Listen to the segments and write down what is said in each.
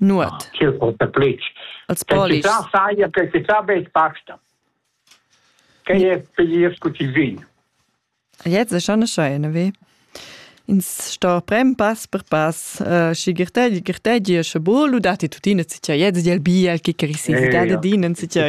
nuot ch'el porta plitsch als polis che saja che si fa be pasta che è feliz cu ti vin jetzt ist schon schön wie ins sto prem pass per pass schi girtegi girtegi e sche bolu dati tutina si tia jetzt del biel che crisisi da dinen si tia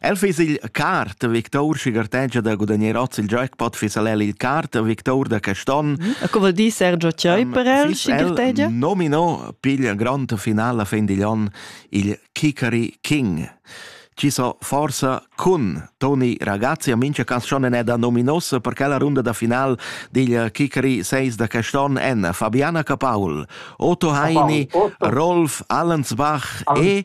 El fiss il cart victor schi gartegia da gudagnar oz il jackpot fiss el il cart victor da quest'on. E co vuol dir Sergio Chioi per el, schi gartegia? Nomino piglia grand final a fin digl on il Kikari King. Ci so forsa cun Toni ragazzi a mincha canzone è da nominos perché la runda da final digl Kikari 6 da quest'on en Fabiana Capaul, Otto Heini, Rolf Allensbach e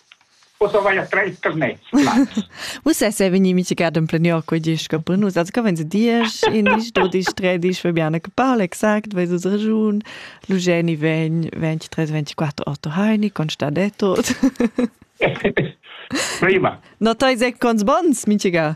Ussa vai a treis carnets. Ussa sei vegni mitigat en plenior quei diesch per nus. Also kann wenn sie diesch, indisch, dodisch, tredisch, wir biane parla exakt, weil es ragiun. Lugeni vegn 23, 24 Otto Heini, Constadetto. Prima. No tai sec cons bons, mitiga.